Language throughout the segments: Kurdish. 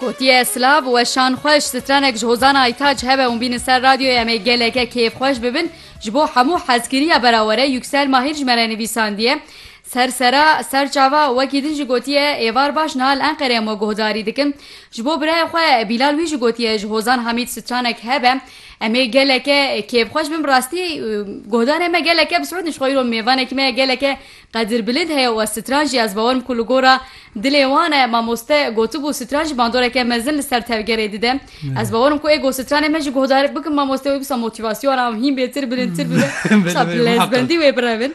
Gotiye silav weşan xweş strenek ji hozan Aytac hebe ûn bînin ser radyoyê em ê geleke kêfxweş bibin ji bo hemû hezkiriya berawere Yuksel Mahir ji me re nivîsandiye ser sera ser çava wekî din jî gotiye êvar baş niha li Enqerê em we guhdarî dikin ji bo birayê xwe Bîlal wî jî gotiye ji hozan Hamîd stranek hebe em ê geleke kêfxweş bim rastî guhdarê me geleke bi Siûd nişxwe îro mêvanekî me geleke Qedir bilind heye û stran jî ez bawer im ku li gora dilê wan e. Mamoste gotibû stran ji bandoreke mezin li ser tevgerê dide. Ez bawer im ku ê ku stranê me ji guhdar bikim mamoste wê wisa motîvasyona wan hîn bêtir bilindtir bibe. Wisa bi lezbendî wê birevin.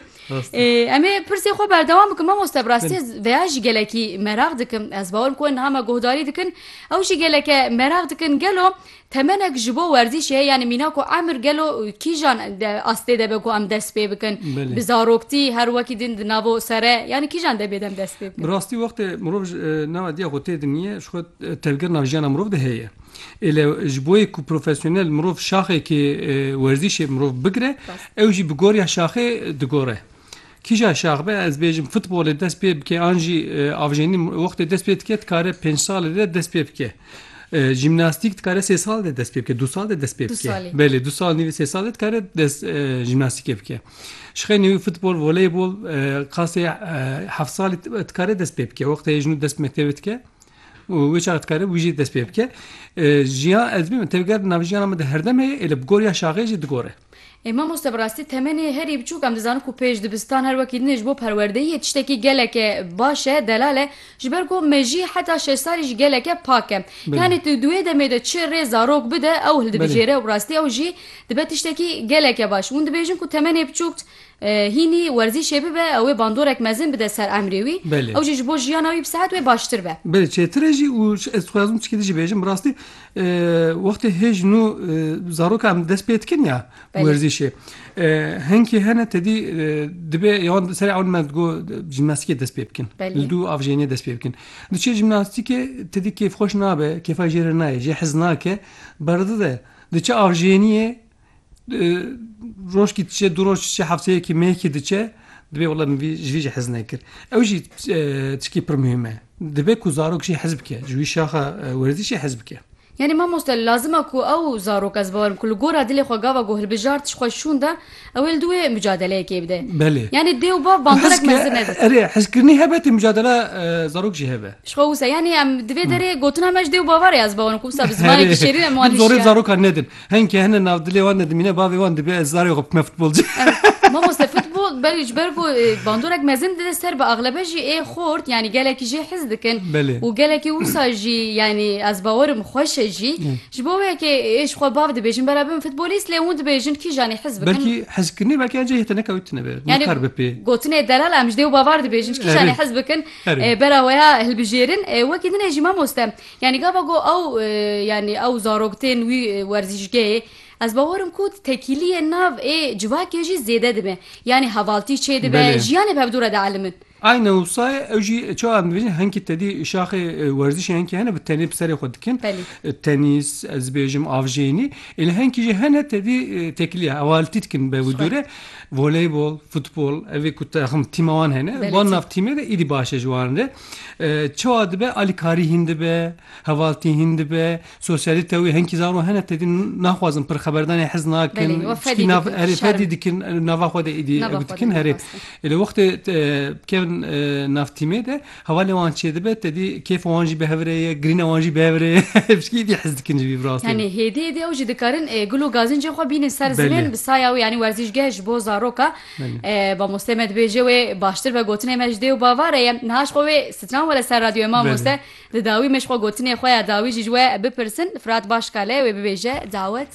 Em ê pirsê xwe berdewam bikin mamoste bi rastî ez veya jî gelekî meraq dikim. Ez bawer im ku niha me guhdarî dikin ew jî geleke meraq dikin. Gelo Temenek ji bo werzîşê heye yanî mîna ku emir gelo kîjan astê de be ku em dest pê bikin bi zaroktî her wekî din di nava sere yanî kîjan de bê dem dest pê bikin. Bi rastî wextê mirov ji nava diya xwe tê dinîye ji xwe tevgera nav jiyana mirov de heye. Ê le ji bo yê ku profesyonel mirov şaxekê werzîşê mirov bigire ew jî bi goriya şaxê digore. Kîja şax be ez bêjim futbolê dest pê bike an jî avjenî wextê dest pê dike dikare pênc salê de dest pê bike. Jîmnastîk dikare sê sal de dest pê bike, du sal de dest pê bike. Belê du sal nîvê sê sal de dikare dest jîmnastîkê bike. Şixeyne wî futbol, voleybol qasê heft salî dikare dest pê bike. Wextê hêjin û dest bi mektebê dike û wê çax dikare wî jî dest pê bike. Jiyan ez bêjim tevger di navjiyana min de herdem heye êlê bi goriya şaxê jî digore. Ê mamoste bi rastî temenê herî biçûk em dizanin ku pêş dibistan her wekî din ê ji bo perwerdeyî yê tiştekî geleke baş e, delal e, ji ber ku mejî heta şeş salî jî geleke pak e. Yanî tu di wê demê de çi rê zarok bide ew hildibijêre û bi rastî ew jî dibe tiştekî geleke baş. Hûn dibêjin ku temenê biçûk hînî werzîşê bibe ew ê bandorek mezin bide ser emrê wî, ew jî ji bo jiyana wî bi sehet wê baştir be. Belê çêtir e jî û ez dixwazim çikê din jî bêjim bi rastî Wextê hê ji nû zarokan dest pê dikin ya werzîşê hinkî hene tedî dibe yan serê ewn me digo jîmnastikê dest pê bikin li dû avjênê dest pê bikin di çê jîmnastikê tedî kêfxweş nabe kêfa jê re nayê jê hez nake berdide di çi avjêniyê Rojkî diçe du roj diçe hefteyekî meyekî diçe dibê wela min vî ji vî jî hez nekir. Ew jî çikî pir muhîm e. Dibe ku zarok jî hez bike. Ji wî şaxa werzîşê hez bike. Yanî mamoste lazim e ku ew zarok ez bawerim ku li gora dilê xwe gava ku hilbijart tişt xwe şûn da ew ê li dûyê mucadeleyekê bide. Belê. Yanî dê û bav bandorek mezin nebin. Erê hezkirinî hebe tê mucadela zarok jî hebe. Ji xwe wisa. Yanî em divê derê gotina me ji dê û bava re ez bawerim ku wisa bi zimanekî şêrîn em wan hişya. Dib zorê bi zarokan nedin. Henkê hene nav dilê wan de dimîne bavê wan dibê ez zarê xwe bikme futbolci. Mamoste futbol belê ji ber ku e, bandorek mezin dide ser bi axlebe jî ê xort yanî gelekî jê hez dikin Belê. û gelekî wisa jî yanî ez bawerim xweş e jî ji bo wê yekê ê ji xwe bav dibêjin bera bibin futbolîst lê hûn dibêjin kîjanî hez bikin Belkî hezkirinê belkî encê hê te nekewtine be. Yani Nixer be pê. gotinê delal em ji dê û bavar dibêjin ji kîjanê Erê. hez bikin Erê. e, bera weya hilbijêrin E, wekî din ê jî mamoste Yanî gava ku ew yanî ew zarok tên wî werzîşgehê ez bawer im ku tekîliyê nav ê civakê jî zêde dibe. Yanî hevaltî çêdibe, jiyanê bevdû re dielime in. Ayna Wsayê ew jî çawa em dibêjin hinkî tedî şaxê werzîşê hinkî hene bi tenê bi serê xwe dikin. Tenîs, ez dibêjim avjênî. Îlê hinkî jî hene tedî tekîliya hevaltî dikin bevdû re. Voleybol, futbol evê ku taxim tîma wan hene. Wan nav tîmê de îdî baş e ji wan re. Çawa dibe alîkarî hîn dibe, hevaltî hîn dibe, sosyalîte wî henkî zaro hene tedî naxwazin pir xeberdanê hez nakin erê fedî dikin nava xwe de êdî ew dikin herê. Lê wextê bikevin navtîmê de hevalê wan çê dibe tedî kêfa wan jî bi hev re ye, girîna wan jî bi hev re ye piştî êdî hez dikin ji vî bi rastî. Yanî hêdî êdî ew jî dikarin gul û gazîncên xwe bînin ser zimên bi saya wî yanî werzîşgeh ji bo zaroka Mamoste me dibêje wê baştir be gotinê me ji dê û bavare ye niha ji xwe wê stran were ser radyoyê mamoste di dawî me ji xwe gotinê xwe ya dawî jî ji we bipirsin firat baş kale wê bibêje dawet.